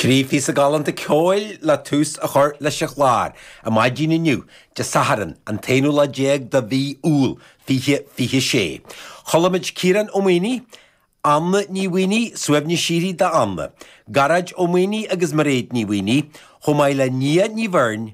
Trí phíosa galánta ceoil le tús a chur leis an chlár, ar maidin inniu, Dé Sathairn, an t-aonú lá déag de mhí Iúil, fiche fiche sé. Chuala muid Ciarán Ó Maonaigh, Anna Ní Mhaonaigh, Suaimhneas Síoraí d'Anna, Gearóid Ó Maonaigh agus Mairéad Ní Mhaonaigh, chomh maith le Nia Ní Bheirn,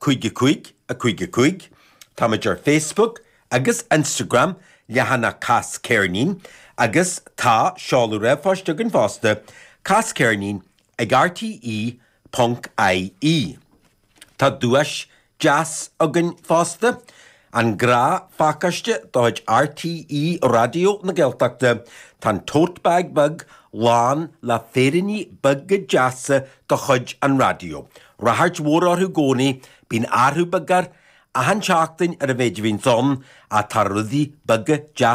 Cúig a cúig a cúig a cúig Tá muid ar Facebook agus Instagram leathanach Cas Ceirnín agus tá seoladh ríomhphoist againn fosta, casceirnín ag rte ponc ie. Tá duais deas againn fosta, An grá-phacáiste de chuid RTÉ Raidió na Gaeltachta, tá an tote bag beag lán le féiríní beaga deasa de chuid an raidió. Ráchairt mhór orthu i gcónaí, bíonn athrú beag air achan tseachtain ar an mhéid a bhíonns ann, ach tá rudaí beaga deasa